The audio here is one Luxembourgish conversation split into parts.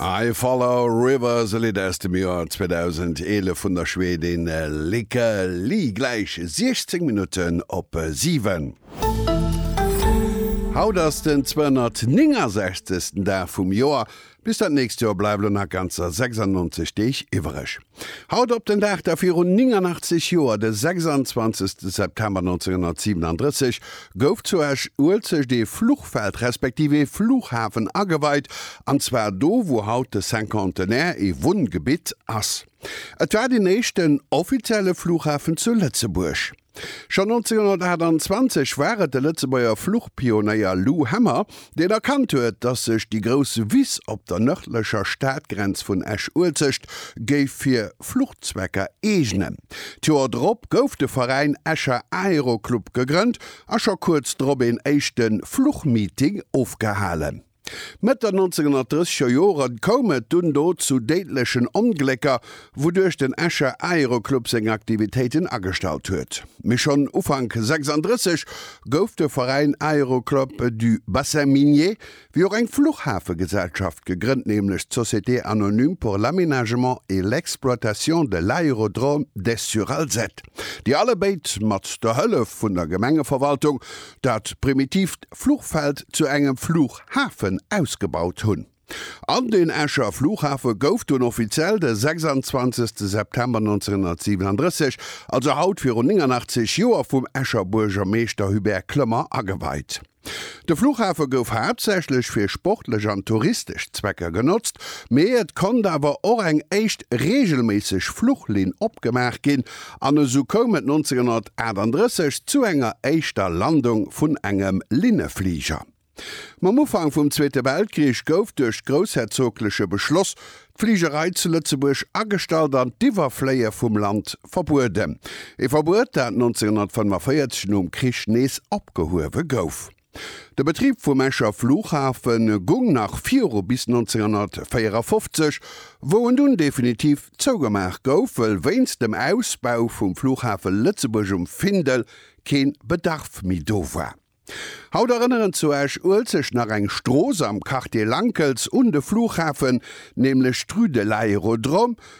I Follow Rivers, e Lidd aus dem Joer 2011 vun der Schwedin Lykke Li. Gläich 16 Minutten op 7. Haut ass den 269. Dag vum Joer. Bis dat nächst Joer bleiwe lo nach ganzer 96 Deeg iwwereg. Haut op den Dag, da virun 89 Joer, de 26 September 1937, gouf zu Esch-Uelzecht ee Fluchfeld respektiv ee Fluchhafen ageweit, an zwar do, wou haut de Cinquantenaire ee Wunngebitt ass. Et war den éischten offizielle Fluchhafen zu Lëtzebuerg. Schonn 1928 war et de Lëtzebuerger Fluchpionéier Lou Hemmer, deen erkannt huet, datt sech déi grouss Wiss op der nërdlecher Stadgrenz vun Esch-Uelzecht géif fir Fluchzwecker eegnen. D'Joer drop gouf de Veräin Escher Aero Club gegrënnt a scho kuerz drop een éischte Fluchmeeting ofgehalen. D'Mëtt der 1930er Jore koum et dunn do zu déidlechen Onglécker, wouduerch den Escher Aeroclub seng Aktivitéiten agestallt huet. Mee schonn Ufank 36 gouf de Veräin Aéroclub du Bassin Minier, wéi och eng Fluchhafegesellschaft gegrënnt, nämlech d'Société anonyme pour l'aménagement et l'exploitation de l'aérodrome d'Esch-sur-Alzette, déi allebéid mat der Hëllef vun der Gemengeverwaltung dat primitiivt Fluchfeld zu engem Fluchhafen ausgebaut hunn. An den Escher Fluchhafe gouf dunn offiziell de 26 September 1937, also haut virun 89 Joer, vum Escher Buergermeeschter Hubert Clement ageweit. De Fluchhafe gouf haaptsächlech fir sportlech an touristesch Zwecker genotzt, mee et konnt awer och eng éischt reegelméisseg Fluchlinn opgemaach ginn An esou koum et 1938 zu enger éischter Landung vun engem Linnefliger. Mam Ufank vum Zweete Weltkrich gouf duerch groussherzogleche Beschloss d'Fligerei zu Lëtzebuerg agestallt an d'Iwwerfléie vum Land verbueden, ee Verbuet, dat 1945 nom Krich nees opgehuewe gouf. De Betrib vum Escher Flughafe gung nach viru bis 1954, wou en dunn definitiv zougemaach gouf, wëll wéinst dem Ausbau vum Flughafe Lëtzebuerg um Findel keen Bedarf méi do war. Haut erënneren zu Esch-Uelzecht nach eng Strooss am Quartier Lankels un de Flughafen, nämlech d'Rue de l'Aérodrome,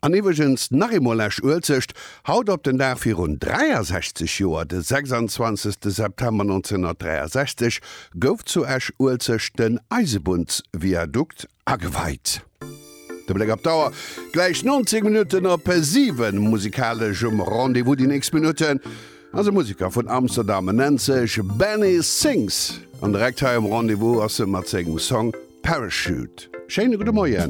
An iwweregens nach eemol Esch Uelzecht, haut op den Dag virun 63 Joer, de 26 September 1963 gouf zu Esch Uelzecht den Eisebunnsviadukt ageweit. De Bléck op d'Auer, gläich 90 Minutten op 7, musikalesch um Rendez-vous déi nächst Minutten ass e Museker vun Amsterdam, en nennt sech Benny Sings an direkt hei um Rendez-vous ass e mat sengem Song Parachute. Schéine gudde Moien.